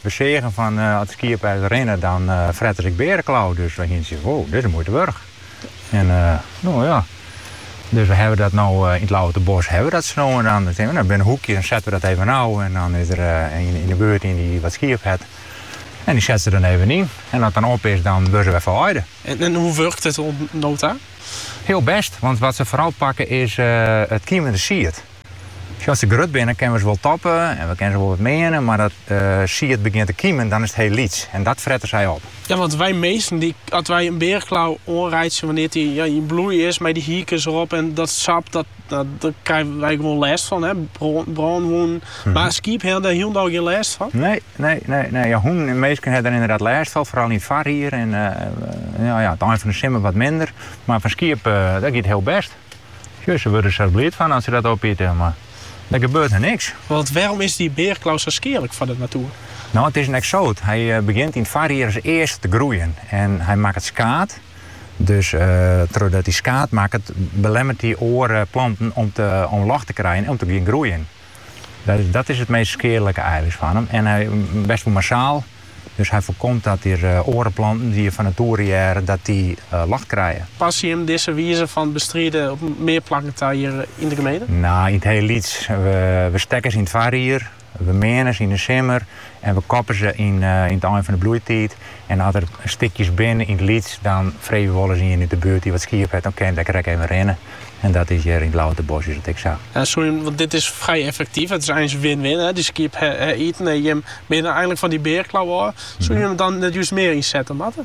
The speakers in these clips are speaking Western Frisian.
We seagen fan as de skiepen ris rinne, dan frette se ek beareklau. Dus wy hienen sjoen, wow, dit is de muoite wurdich. En no ja, dus we hawwe dat no yn it Lauwertebosk hawwe we dat sa no en dan. Dan tink we, binne hoekjes, dan sette we dat even ôf. En dan is der ien yn de buert dy't wat skiep hat. En dy set se dan even yn. En as it dan op is, dan wurde se wer ferweide. En hoe wurkt it oant no ta? Hiel bêst, want wat se foaral pakke is it kiemende sied. As se grut binne kinne we se wol topje en we kinne se wol wat meane, mar as it sied begjint te kymjen, dan is it hiel lyts en dat frette sy op. Ja, want wy minsken, as wy in beareklau oanreitsje wannear't dy yn bloei is mei dy hierkens erop en dat sap, dêr krije wy gewoan lêst fan, brânwûnen. Mar skiep hawwe dêr hielendal gjin lêst fan. Nee, nee, nee, nee. Ja, hûnen en minsken hawwe der yndied lêst fan, foaral yn it foarjier en yn it ein fan de simmer wat minder, mar fan skiep, dat giet hiel bêst. Sjoch, se wurde der bliid fan as se dat opite, mar der gebeurt harren niks. Want wêrom is dy beareklau sa skealik foar de natoer? No, it is in eksoot. Hy begjint yn it foarjier as earste te groeien en hy makket skaad. Dus trochdat hy skaad makket, belemmeret hy oare planten om ljocht te krijen en om te gean groeien. Dat is it meast skealike eins fan him en hy waakst wol massaal, dus hy foarkomt dat der oare planten dy't er fan natoere hearre, dat dy ljocht krije. Passe jim dizze wize fan bestriden op mear plakken ta hjir yn de gemeente? No, yn it hiel lyts. We stekke se yn it foarjier, we meane se yn de simmer En we koppe se yn it ein fan de bloeitiid. En as der stikjes binne yn it lyts, dan frege we wolris ien út de buert dy't wat skiep hat, dan kin dat der krekt even rinne. En dat is hjir yn it Lauwertebosk is dat ek sa. Ja, soe jim, want dit is frij effektief. It is eins win-win. Dy skiep ha iten en jim binne eigenlik fan dy beareklau ôf. Soe jim it dan net just mear ynsette moatte?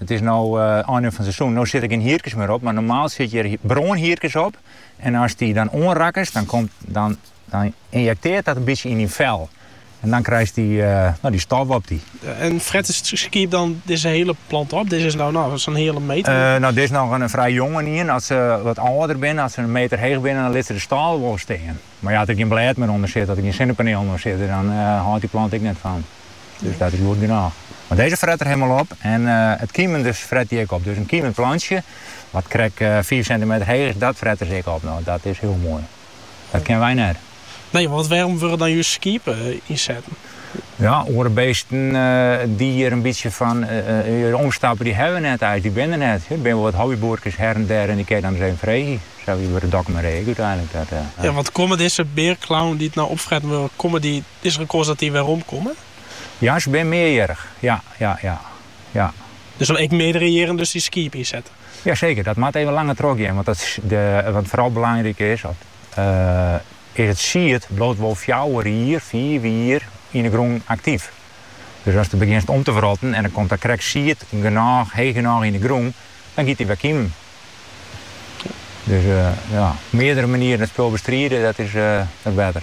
It is no oan 'e ein fan it seizoen. No sitte der gjin hierkes mear op, mar normaal sitte hjir brânhierkes op. En as dy dan oanrekkest, dan komt, dan, dan injekteart dat in bytsje yn dyn fel. En dan krijst dy, eh, no, dy stof op dy. En fret it skiep dan dizze hiele plant op? Dizze is no, no, sa'n heale meter. Eh, no, dit is noch in frij jongenien. As se wat âlder binne, as se in meter heech binne, dan litte se de stâle wol stean. Mar ja, as der gjin blêd mear ûnder sit, as der gjin sinnepanelen oan sitte, dan hâldt dy plant ek net fol. Dus dat is goed genôch. Mar dizze frette se hielendal op en it kiemende frette se ek op. Dus in kiemend plantsje, wat krekt fiif sintimeter heech is, dat frette se ek op. No, dat is hiel moai. Dat kinne wy net. Nee, want wêrom wurde dan just skiep ynsetten? Ja, oare beesten dy't hjir in bytsje fan hjir omstappe, dy hawwe net eins, dy binne der net. Der binne wol wat hobbyboerkes hjir en dêr en dy kinne je dan ris even freegje. Sa wie it by de Dokkumer Ie ek úteinlik. Ja, want komme dizze beareklauwen dy't no opfretten wurde, komme dy, is der in kâns dat dy weromkomme? Ja, se binne mearjierrich. Ja, ja, ja, ja. Der soe ek meardere jierren dus dy skiep yn sitte? Ja, seker. Dat moat even langer trochgean, want wat foaral belangryk is, is it sied bliuwt wol fjouwer jier, fiif jier, yn 'e grûn aktyf. Dus ast begjinst om te wrotten en der komt dan krekt sied genôch, heech genôch yn 'e grûn, dan giet dy wer kymjen. Dus ja, op meardere manieren it spul bestride, dat is better.